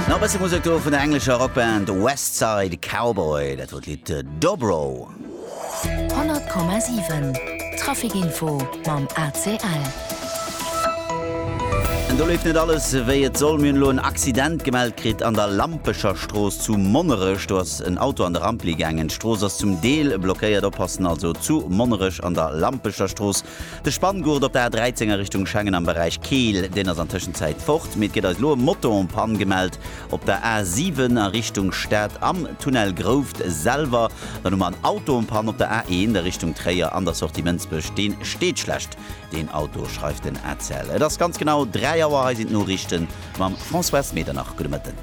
Nach e bësse Musek do vun der englescher Rockband West Side Cowboy, dat wor d'Lidd Dobro. 100,7 Traficinfo mam ACL. An do leeft net alles wéi et soll. Mir hunn elo en Accident gemellt kritt an der Lampecher Strooss zu Monnerech. Do ass en Auto an de Rampli gaangen. D'Strooss ass zum Deel blockéiert. Oppassen also zu Monnerech an der Lampecher Strooss. De Spanngurt op der A13 a Richtung Schengen am Beräich Keel, deen ass an Tëschenzäit fort, mee et gëtt eis elo e Motor en panne gemellt op der A7 a Richtung Stad am Tunnel Grouft selwer. Dann hu mer en Auto en panne op der A1 a Richtung Tréier an der Sortie Mënsbech, dee steet schlecht, deen Auto, schreift den ACEL. Et ass ganz genau 3 Auer, hei sinn d'Noriichte mam François S. Medernach. Gudde Mëtten.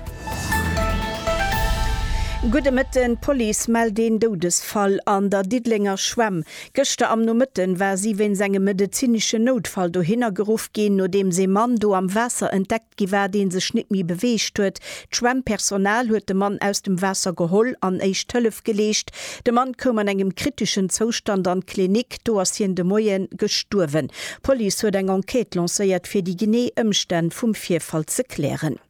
Gudde Mëtten. D'Police mellt een Doudesfall an der Diddelenger Schwämm. Gëschter am Nomëtten war si wéinst engem medezineschen Noutfall dohinner geruff ginn, nodeems ee Mann do am Waasser entdeckt gi war, dee sech net méi beweegt huet. D'Schwämmpersonal huet de Mann aus dem Waasser geholl an éischt Hëllef geleescht. De Mann koum an engem kriteschen Zoustand an d'Klinik, do ass hien de Moie gestuerwen. D'Police huet eng Enquête lancéiert, fir déi genee Ëmstänn vum Virfall ze klären.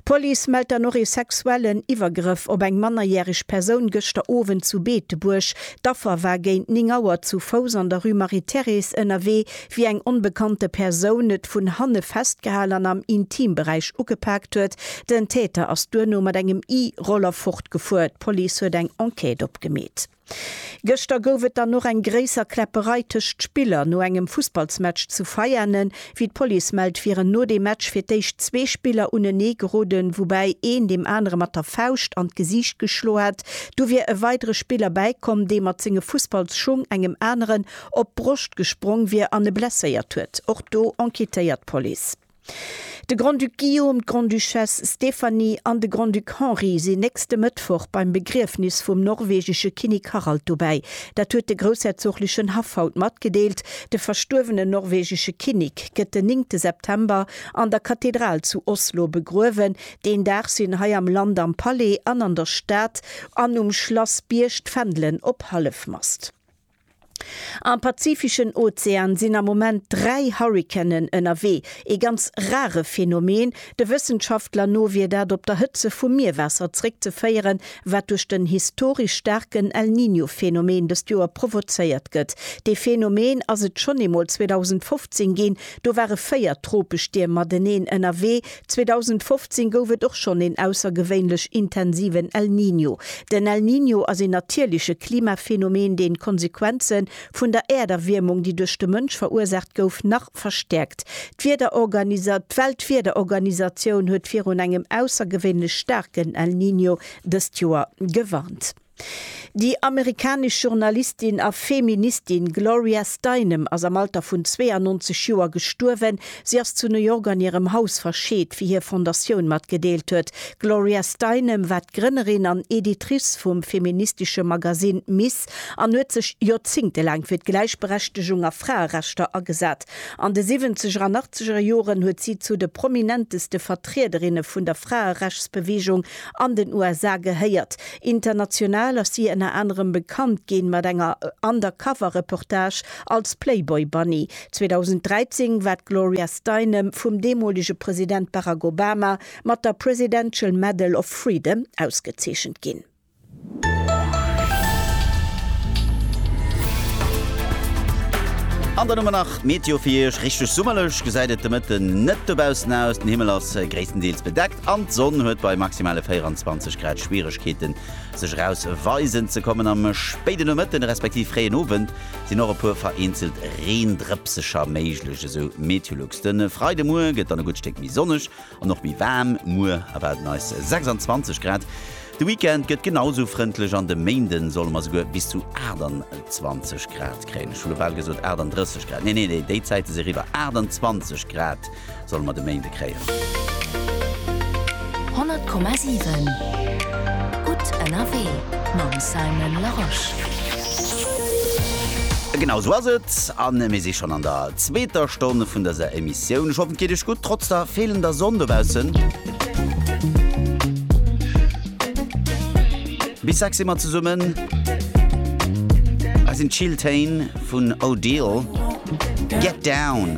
D'Police mellt dann och ee sexuellen Iwwergrëff op eng mannerjäreg Persoun gëschter Owend zu Beetebuerg. D'Affer war géint 9 Auer zu Fouss an der Rue Marie-Thérèse ënnerwee, wéi eng onbekannte Persoun et vun hanne festgehal an am Intimberäich ugepaakt huet. Den Täter ass duerno mat engem E-Roller fortgefuer. D'Police huet eng Enquête opgemeet. Gëschter gouf et dann och eng gréisser Kläpperei tëscht Spiller no engem Fussballsmatch zu Veianen. Wéi d'Police mellt, wieren no deem Match fir d'éischt zwee Spiller unenee geroden, woubäi een deem anere mat der Fauscht an d'Gesiicht geschloe hätt. Du wier e weidere Spiller bäikomm, dee mat senge Fussballsschung engem aneren op d'Broscht gesprong wier an e blesséiert huet. Och do enquêtéiert d'Police. De Grand-Duc Guillaume, d'Grande-Duchesse Stéphanie an de Grand-Duc Henri sinn nächste Mëttwoch beim Begriefnis vum norwegesche Kinnek Harald dobäi. Dat huet de groussherzoglechen Haff haut matgedeelt. De verstuerwenen norwegesche Kinnek gëtt den néngte September an der Kathedral zu Oslo begruewen. Deen Dag sinn hei am Land am Palais an an der Stad an um Schlass Bierg d'Fändelen op Hallefmast. Am pazifischen Ozean sinn am Moment dräi Hurrikanen ënnerwee. Ee ganz rare Phänomen. De Wëssenschaftler no wier dat op der Hëtze vum Mierwaasser zréckzeféieren, wat duerch den historesch staarken El Niño Phänomen dëst Joer provozéiert gëtt. Dee Phänomen ass et schonn eemol 2015 ginn, do ware véier Tropestierm mateneen ënnerwee, 2015 gouf et och schonn een aussergewéinlech intensiven El Niño. Den El Niño ass een natierleche Klimaphänomen, deen d'Konsequenze vun der Äerderwiermung, déi duerch de Mënsch verursaacht gouf, nach verstäerkt. D'Weltwiederorganisatioun huet virun engem aussergewéinlech staarken El Niño dëst Joer gewarnt. Déi amerikanesch Journalistin a Feministin Gloria Steinem ass am Alter vun 92 Joer gestuerwen. Si ass zu New York an hirem Haus verscheet, wéi hir Fondatioun matgedeelt huet. D'Gloria Steinem war d'Grënnerin an Editrice vum feministesche Magasinn Ms. An huet sech joerzéngtelaang fir d'Gläichberechtegung a Fraerechter agesat. An de Siwwenzeger an Achtzegere Joren huet si zu de prominenteste Vertriederinne vun der Fraerechtsbeweegung an den USA gehéiert. International ass si ënner anerem bekannt ginn mat enger Undercover Reportage als Playboy Bunny. 2013 war d'Gloria Steinem vum deemolege President Barack Obama mat der Presidential Medal of Freedom ausgezeechent ginn. An dann hu mer nach d'Meteo fir Iech. Richteg summerlech gesäit et de Mëtten net dobaussen aus. Den Himmel ass gréisstendeels bedeckt an d'Sonn huet bei maximale 24 Grad Schwieregkeete sech eraus weisen ze kommen. Am spéiden Nomëtten, respektiv fréien Owend sinn och e puer vereenzelt Reendrëpsecher méiglech, esou Meteolux. De Freidemuer gëtt dann e gutt Stéck méi sonneg An och méi waarm, muer erwaarden eis 26 Grad. De Weekend gëtt genau sou frëndlech an de Méinde solle mer souguer bis zu 28 Grad kréien. Ech hu lo bal gesot 38 Grad, nee, nee, déi Zäite si eriwwer. 28 Grad solle mer de Méinde kréien. 100,7 Gutt ënnerwee mam Simon Larosche. Genau sou ass et, a mir si schonn an der zweeter Stonn vun dëser Emissioun. Sioun, ech hoffen et geet iech gutt trotz der feelender Sonn dobaussen. Bis sechs si mer zesummen, dat sinn d'Chill Téin vun Odile, Get Down.